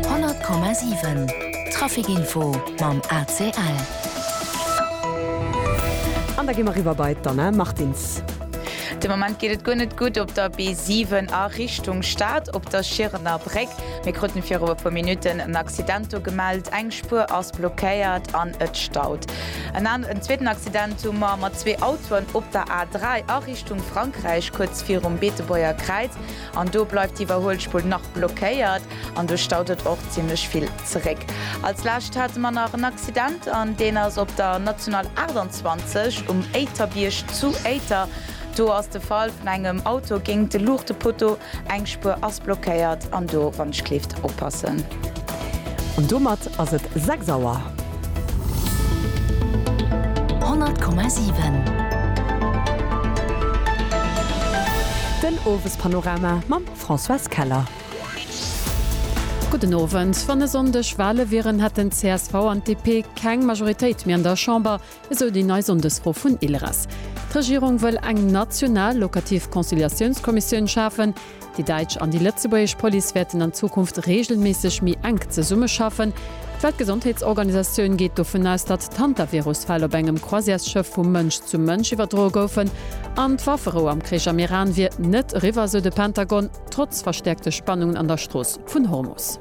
100,7 Trafic Info mam ACL. An da gi mer eriwwer bei d'Anna Martins. De Moment geet et guer net gutt op der B7 a Richtung Stad op der Schierener Bréck. Mir kruten viru e puer Minutten en Accident do gemellt. Eng Spuer ass blockéiert an et staut. En an en zweeten Accident hu mer mat zwee Autoen op der A3 a Richtung Frankräich, kuerz virum Beetebuerger Kräiz. An do bleift d'Iwwerhuelspull nach blockéiert an do staut et och zimmlech vill zeréck. Als lescht hate mer nach en Accident an deen ass op der National 28 um Éiterbierg zu Éiter. Do ass de Fall vun engem Auto géingt de Luuchtepotto. Eng Spuer ass blockéiert an do, wann ech kleeft, oppassen. An domat ass et 6 Auer. 100,7. Den Owespanorama mam Françoise Keller. Gudden Owend. Wann e Sonndeg Wale wieren, hätten d'CSV an d'DP keng Majoritéit méi an der Chamber. Esou déi nei Sonndesfro vun ILRAS. D'Regierung wëll eng national locativ Conciliatiounskommissioun schafen. Déi däitsch an déi lëtzebuergesch Police wäerten an Zukunft reegelméisseg méi enk zesummeschaffen. D'Weltgesondheetsorganisatioun geet dovun aus, datt d'Hantavirus-Fäll op engem Croisièresschëff vu Mënsch zu Mënsch iwwerdroe goufen. An d'Wafferou am Krich am Iran wier net eriwwer, esou de Pentagon, trotz verstäerkte Spannungen an der Strooss vun Hormus.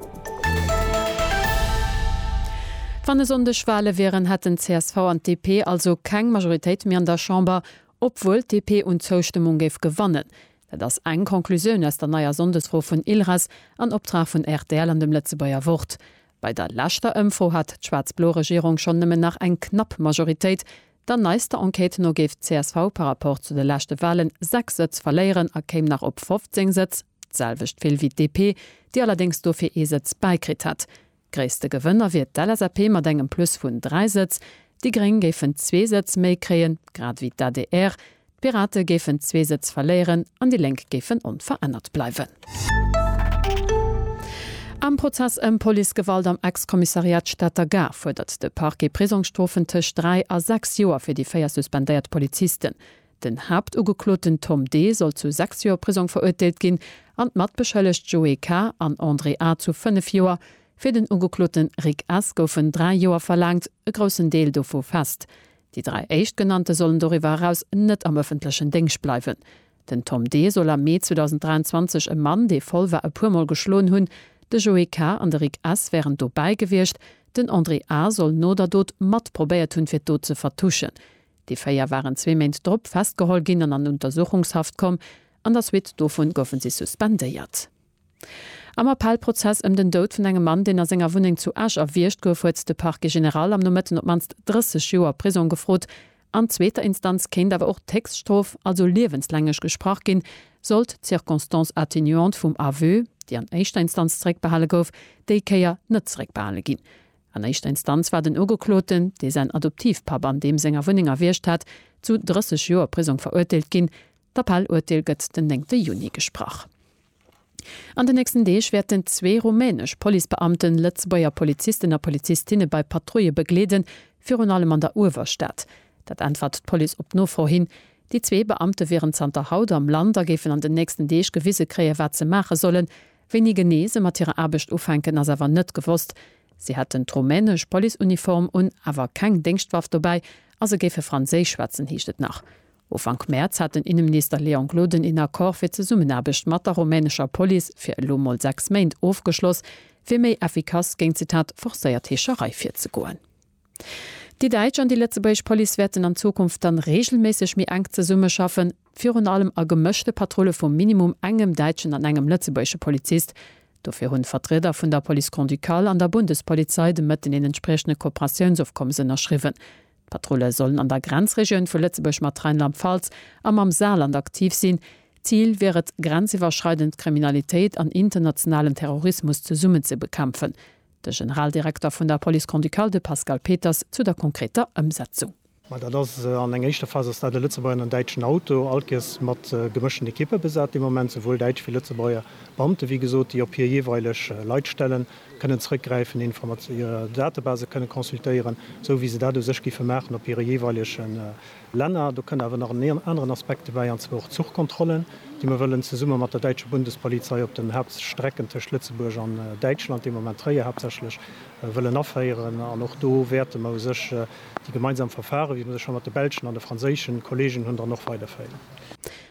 Wann e Sonndeg Wale wieren, hätten csv an DP also keng Majoritéit méi an der Chamber, obwuel d'DP un Zoustëmmung géif gewannen. Dat ass eng Conclusioun aus der neier Sonndesfro vun ILRES an Optrag vun rtl an dem Lëtzebuerger Wort. Bei der leschter Ëmfro hat d'schwaarz-blo Regierung schonn nëmmen nach eng knapp Majoritéit, Der neister Enquête no géif csv par rapport zu de leschte Walen 6 Sëtz verléieren a kéim nach op 15 Sëtz, d'selwecht vill wéi d'DP, déi allerdéngs dofir ee Sëtz bäikritt hätt. Gréisste Gewënner wier d'LSAP mat engem Plus vun 3 Sëtz, déi Gréng géifen zwee Sëtz méi kréien, grad ewéi d'ADR, D'Pirate géifen zwee Sëtz verléieren an déi Lénk géifen onverännert bleiwen. Am Prozess ëm Policegewalt am Ex-Kommissariat Stater Gare fuerdert de Parquet Prisongsstrofen tëscht dräi a sechs Joer fir déi véier suspendéiert Polizisten. Den Haaptugekloten Tom D. soll zu sechs Joer Prisong verurteelt ginn an d'Matbeschëllegt Joé K. an André A. zu fënnef Joer. Fir den Ugekloten Rick S. goufen dräi Joer verlaangt, e groussen Deel dovu fest. Déi dräi Éischtgenannte sollen doriwwer eraus net am ëffentlechen Déngscht bleiwen. Den Tom D. soll am Mee 2023 e Mann, dee voll war, e puermol geschloen hunn. De Joé K. an de Rick S. wären dobäi gewiescht. Den André A. soll no der Dot mat probéiert hunn, fir d'Dot ze vertuschen. Déi véier waren zwee Méint drop festgeholl ginn an an Untersuchungshaft komm. An der Suite dovu goufe si suspendéiert. Am Appellprozess ëm den Doud vun engem Mann, deen a senger Wunneng zu Esch erwiergt gouf, huet de Parquet général am Nomëtten op d'mannst 30 Joer Prisong gefrot. An zweeter Instanz kéint awer och d'Héchststrof, also liewenslänglich, gesprach ginn, sollt d'Circonstance atténuante vum Aveu, déi an éischter Instanz zeréckbehale gouf, déi Kéier net zeréckbehale ginn. An éischter Instanz war den Ugekloten, dee säin Adoptivpapp an deem senger Wunneng erwiergt hat, zu 30 Joer Prisong verurteelt ginn. D'Appellurteel gëtt den 9 Juni gesprach. An den nächsten Deeg wäerten zwee rumänesch Policebeamten Lëtzebuerger Polizisten a Polizistinne bei Patrouille begleeden, virun allem an der Uewerstad. Dat äntwert d'Police op Nofro hin. Déi zwee Beamte wieren zanter haut am Land a géifen an den nächsten Deeg gewise kréien, wat se maache sollen. Wéini genee se mat hirer Aarbecht ufänken, ass awer net gewosst. Si hätten d'rumänesch Policeuniform un, awer keng Déngschtwaff dobäi a se géife Franséisch schwätzen, heescht et nach. Ufank Mäerz hat den Inneminister Léon Gloden een Accord fir d'Zesummenaarbecht mat der rumänescher Police fir elo mol 6 Méint ofgeschloss, fir méi effikass géint, Zitat, forcéiert Heescherei virzegoen. Déi däitsch an déi lëtzebuergesch Police wäerten an Zukunft dann reegelméisseg méi enk zesummeschaffen, virun allem a gemëschte Patrulle vu minimum engem däitschen an engem lëtzebuergesche Polizist. Dofir hunn d'Vertrieder vun der Police Grand-Ducale an der Bundespolizei de Mëtten een entspriechende Kooperatiounsofkommes ënnerschriwwen. D'Patrulle sollen an der Grenzregioun vu Lëtzebuerg mat Rheinland-Pfalz a mam Saarland aktiv sinn. Zil wier et, grenziwwerschreidend Kriminalitéit an internationalen Terrorismus zesummen ze bekämpfen. De Generaldirekter vun der Police Grand-Ducale, de Pascal Peters, zu der konkreter Ëmsetzung. Mä dat ass, an eng éischter Phas ass dat e Lëtzebuerger an en däitschen Auto, all Kees mat gemëschten Ekippe besat de Moment, souwuel däitsch wéi Lëtzebuerger Beamte, wéi gesot, déi op hir jeeweileg Leit stellen. kënnen zrëckgräifen, Informatio hir Datebase kënnen consultéieren, esou wéi se dat u sech géife maachen op hire jeeweilege Länner. Do kënn awer nach en aneren Aspekt dobäi, an zwar och d'Zuchkontrollen, déi mer wëllen zesumme mat der däitsche Bundespolizei op den Hauptstrecken tëscht Lëtzebuerg an Däitschland, dee Moment Tréier haaptsächlech, wëllen aféieren. An och do wäerte mer u sech déi gemeinsam Verfare, wéi mer se scho mat de belschen an de franséische Kollegen hunn, dann och weiderféieren.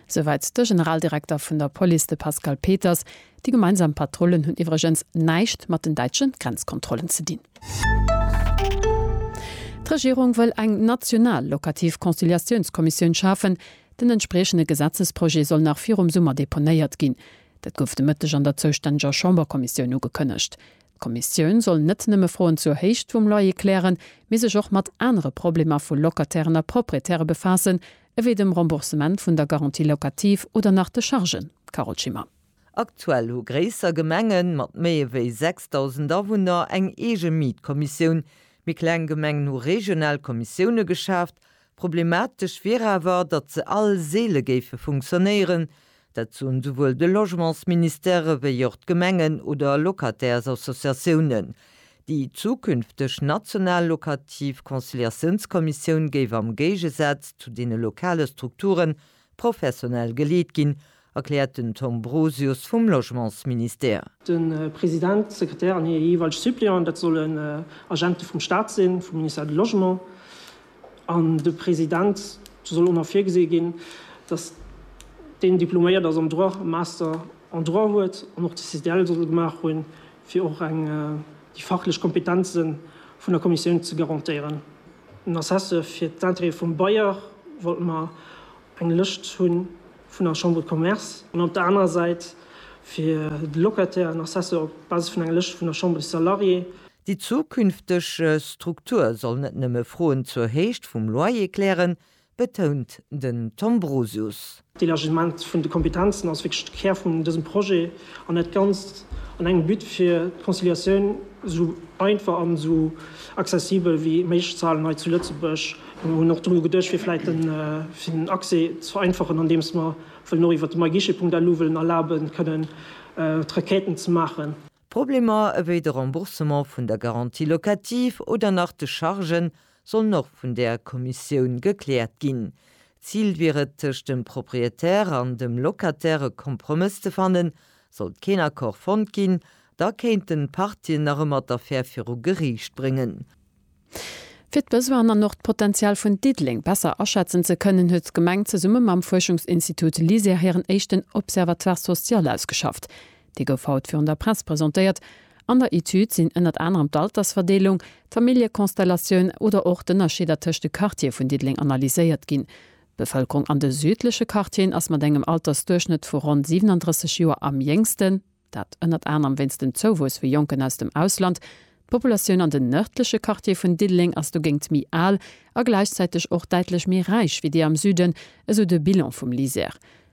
Souwäit de Generaldirekter vun der Police, de Pascal Peters. Déi gemeinsam Patrullen hunn iwwregens näischt mat den däitsche Grenzkontrollen ze dinn. D'Regierung wëll eng national lokativ Conciliatiounskommissioun schafen. Den entspriechende Gesetzesprojet soll nach virum Summer deponéiert ginn. Dat gouf de Mëtteg an der zoustänneger Chamberkommissioun ugekënnegt. D'Kommissioun soll net nëmme Froen zur Héicht vum Loyer klären, mee sech och mat anere Problemer vu Locatairen a Proprietäre befaassen, ewéi dem Remboursement vun der Garantie locative oder nach de Chargen. Carole Schimmer. Aktuell hu gréisser Gemenge mat méi ewéi 6.000 Awunner eng eege Mietkommissioun. Méi kleng Gemengen hu regional Kommissioune geschaaft. Problematesch wier awer, datt se all seele géife funktionéieren. Dat soen souwuel de Logementsministère ewéi och d'Gemengen oder Locataires-Associatiounen. Déi zukünfteg national lokativ Conciliatiounskommissioun géif am Géigesaz zu deene lokale Strukturen Professionell geleet ginn, erkläert den Tom Brosius vum Logementsministère. De President, d'Sekretär an hir jeeweileg Suppléanten, dat solle Agente vum Staat sinn, vum Ministère du Logement. An de President, do soll och nach virgesi ginn, datt deen diploméiert ass am Droit, e Master en Droit huet an och de CDL soll gemaach hunn. fir och eng déi fachlech Kompetenze vun der Kommissioun ze garantéieren. En Assessë fir d'Intérêtë vum Bailleur wollte mer eng Lëscht hu vun der Chambre de Commerce, an op der anerer Säit fir de Locataire en Assessë op Basis vun enger Lëscht vun der Chambre des Salariés. Déi zukünfteg Struktur soll net nëmme Froen zur Héicht vum Loyer klären, betount den Tom Brosius. D'Elargissement vun de Kompetenzen ass wierklech de Kär vun dësem Projet an dat Ganzt an engem But, fir d'Conciliatioun esou einfach an esou accessibel wéi méiglech ze halen hei zu Lëtzebuerg. Mir hunn och dru geduecht, fir vläicht den Accès ze vereinfachen, andeem mer wëllen och iwwert de myguichet.lu wëllen erlabe kënnen d'Requêten ze maachen. Problemer ewéi de Remboursement vun der Garantie locative oder nach de Chargen sollen och vun där Kommissioun gekläert ginn. D'Zil wier et, tëscht dem Proprietär an dem Locataire e Kompromëss ze fannen. Sollt keen Accord fonnt ginn, da kéinten d'Partien nach ëmmer d'Affär viru Geriicht bréngen. Fir d'Besoinen an och d'Potenzial vun Diddeleng besser aschätzen ze kënnen, huet d'Gemeng zesumme mam Fuerschungsinstitut LISER hiren éischten Observatoire social ausgeschafft. Dee gouf haut virun der Press presentéiert. An der Etüd sinn ënnert anerem d'Altersverdeelung, d'Familljekonstellatioun oder och d'Ënnerscheeder tëscht de Quartiere vun Diddeleng analyséiert ginn. D'Bevëlkerung an de südleche Quartieren ass mat engem Altersduerchschnëtt vu ronn 37 Joer am jéngsten, dat ënnert anerem wéinst dem Zouwuess vu Jonken aus dem Ausland. D'Populatioun an den nërdleche Quartiere vun Diddeleng ass dogéint méi al a gläichzäiteg och däitlech méi räich wéi déi am Süden, esou de Bilan vum LISER.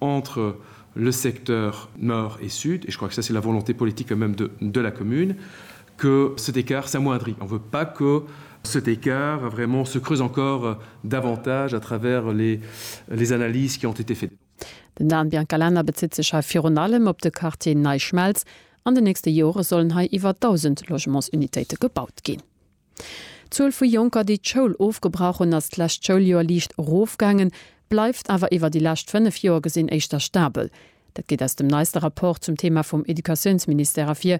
entre le secteur nord et sud, et je crois que ça c'est la volonté politique quand même de de la commune, que cet écart s'amoindrit. On veut pas que cet écart vraiment se creuse encore davantage à travers les les analyses qui ont été faites. Den Dan Biancalana bezitt sech hei virun allem op de Quartier Nei Schmelz. An den nächste Jore sollen hei iwwer 1.000 Logements-Unitéite gebaut ginn. D'Zuel vu Jonker, déi d'Schoul ofgebrach hunn, ass d'lescht Schouljoer liicht erofgaangen, bleift awer iwwer déi lescht fënnef Joer gesinn éischter stabel. Dat geet aus dem neiste Rapport zum Thema vum Educatiounsministère ervir.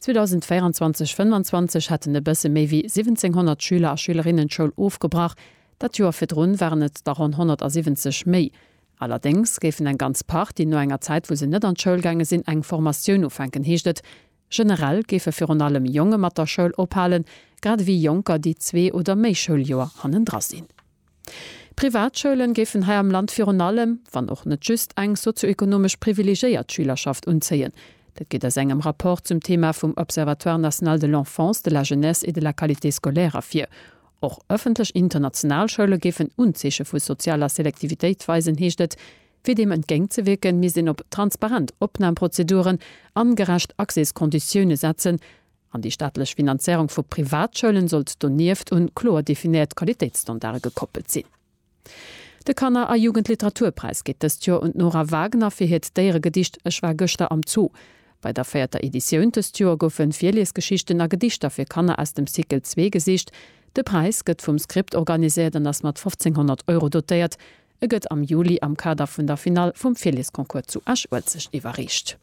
2024/25 hätten e bësse méi wéi 1.700 Schüler a Schülerinnen d'Schoul ofgebrach, dat Joer virdrun waren et der ronn 170 méi. Allerdéngs géifen eng ganz Partie no enger Zäit, wou se net an d'Schoul gaange sinn, eng Formatioun ufänken, heescht et. Generell géife virun allem Jonge mat der Schoul ophalen, grad ewéi Jonker, déi zwee oder méi Schouljoer hannendra sinn. Privatschoule géifen hei am Land virun allem, wann och net just, eng sozioekonomesch privilegéiert Schülerschaft unzéien. Dat geet aus engem Rapport zum Thema vum Observatoire national de l'enfance, de la jeunesse et de la qualité scolaire ervir. Och ëffentlech international Schoule géifen Unzeeche vu sozialer Selektivitéit weisen, heescht et. Fir deem entgéint ze wierken, misst een op transparent Opnamprozeduren an gerecht Accéskonditioune setzen, an déi staatlech Finanzéierung vu Privatschoulen sollt donieft un kloer definéiert Qualitéitsstandarde gekoppelt sinn. De Kanner a Jugendliteraturpräis geet dëst Joer un d'Nora Wagner fir hiert Déieregedicht Ech war gëschter am Zoo. Bei der véierter Editioun dëst Joer goufe Virliesgeschichten a Gedichter fir Kanner aus dem Cycle zwee gesicht. De Präis gëtt vum Script organiséiert an ass mat 1500 Euro dotéiert. E gëtt am Juli am Kader vun der Finall vum Virliesconcours zu Esch-Uelzecht iwwerreecht.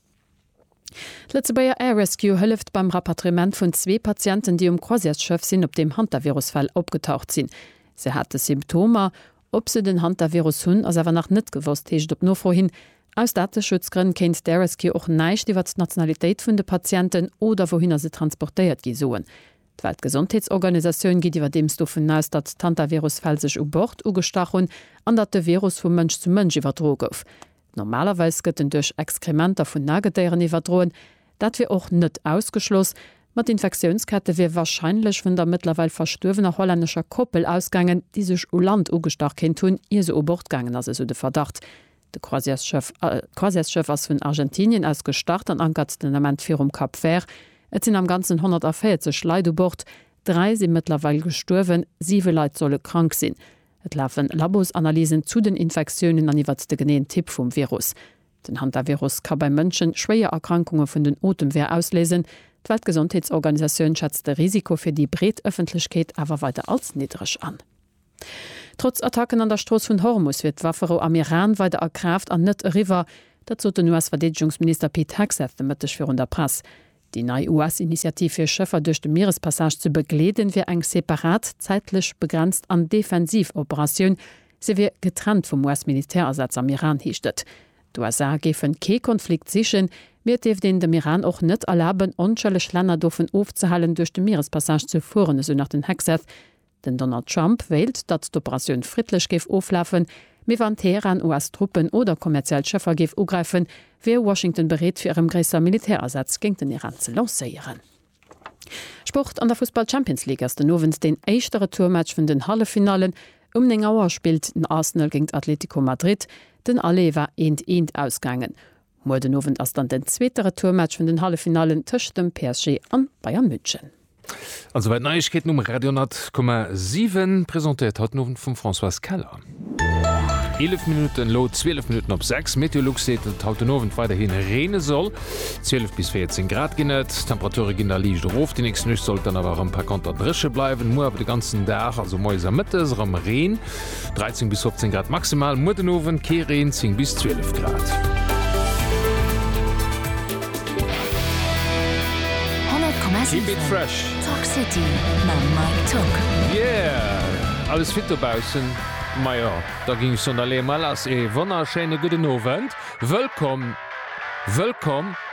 D'Lëtzebuerger Air Rescue hëlleft beim Rapatriement vun zwee Patienten, déi um Croisièresschëff sinn, op deem Hantavirus-Fäll opgetaucht sinn. Se hate Symptomer. Ob se den Hantavirus hunn, ass awer nach net gewosst, heescht et op Nofro hin. Aus Dateschutzgrënn kéint d'Air Rescue och näischt iwwert d'Nationalitéit vun de Patienten oder wouhinner se transportéiert gi soen. D'Weltgesondheetsorganisatioun geet iwwerdeems dovun aus, datt d'Hantavirus-Fäll sech u Bord ugestach hunn an datt de Virus vu Mënsch zu Mënsch iwwerdroe gouf. Normalerweis gëtt en duerch Exkrementer vun Nagedéieren iwwerdroen. Dat wier och net ausgeschloss, ma d'Infektiounskette wier warscheinlech vun der mëttlerweil verstuerwener hollännescher Koppel ausgaangen, déi sech u Land ugestach kéint hunn, ier se u Bord gaangen ass, esou de Verdacht. D'Croisièresschëff ass vun Argentinien aus gestart an ankert den Ament virum Cap Vert. Et sinn am Ganzen 140 Leit u Bord. Dräi si mëttlerweil gestuerwen, siwe Leit solle krank sinn. Et lafe Labosanalysen zu den Infektiounen an iwwert de geneeën Typ vum Virus. Den Hantavirus ka bei Mënschen schwéier Erkrankunge vun den Otemweeër ausléisen. D'Weltgesondheetsorganisatioun schätzt de Risiko fir déi breet Ëffentlechkeet awer weider als niddreg an. Trotz Attacken an der Strooss vun Hormus wier d'Wafferou am Iran weider a Kraaft an net eriwwer. Dat sot den US-Verdeedegungsminister Pete Hegseth de Mëtteg virun der Press. Déi nei US-Initiativ fir Schëffer duerch de Mierespassage ze begleeden, wier eng separat, zäitlech begrenzt an defensiv Operatioun. Se wier getrennt vum US-Militärasaz am Iran, heescht et. D'USA géifen kee Konflikt sichen, mee et dierft een dem Iran och net erlaben, onschëlleg Länner dovun ofzehalen, duerch de Mierespassage ze fueren, esou nach den Hegseth. Den Donald Trump wéilt, datt d'Operatioun friddlech géif oflafen, mee wann Teheran US-Truppen oder kommerziell Schëffer géif ugräifen, wier Washington bereet fir erëm gréisser Militärasätz géint den Iran ze lancéieren. Sport, An der Fussball-Champions League ass den Owend deen éischte Retourmatch vun den Halleffinallen. Um 9 Auer spillt den Arsenal géint Atletico Madrid. Den Aller war eent eent ausgaangen. Muer den Owend ass dann den zweete Retourmatch vun den Halleffinallen tëscht dem PSG an Bayern München. An souwäit Neiegkeeten um Radio 10,7, presentéiert haut den Owend vum Françoise Keller. 11 Minuten elo 12 Minuten op 6 Meteolux seet, datt et haut den Owend weiderhin reene soll. 12 bis 14 Grad ginn et. D'Temperature ginn da liicht erof. Déi nächst Nuecht sollt dann awer erëm par konter dréche bleiwen. Muer awer de ganzen Dag, also moies a mëttes, erëm Reen. 13 bis 15 Grad maximal, muer den Owend kee Reen, 10 bis 12 Grad. Keep it fresh. Yeah! Alles fit dobaussen? Majo, da ginn ech sonn da lee mol lass. Ee wonnerschéine gudden Owend. Wëllkomm, wëllkomm.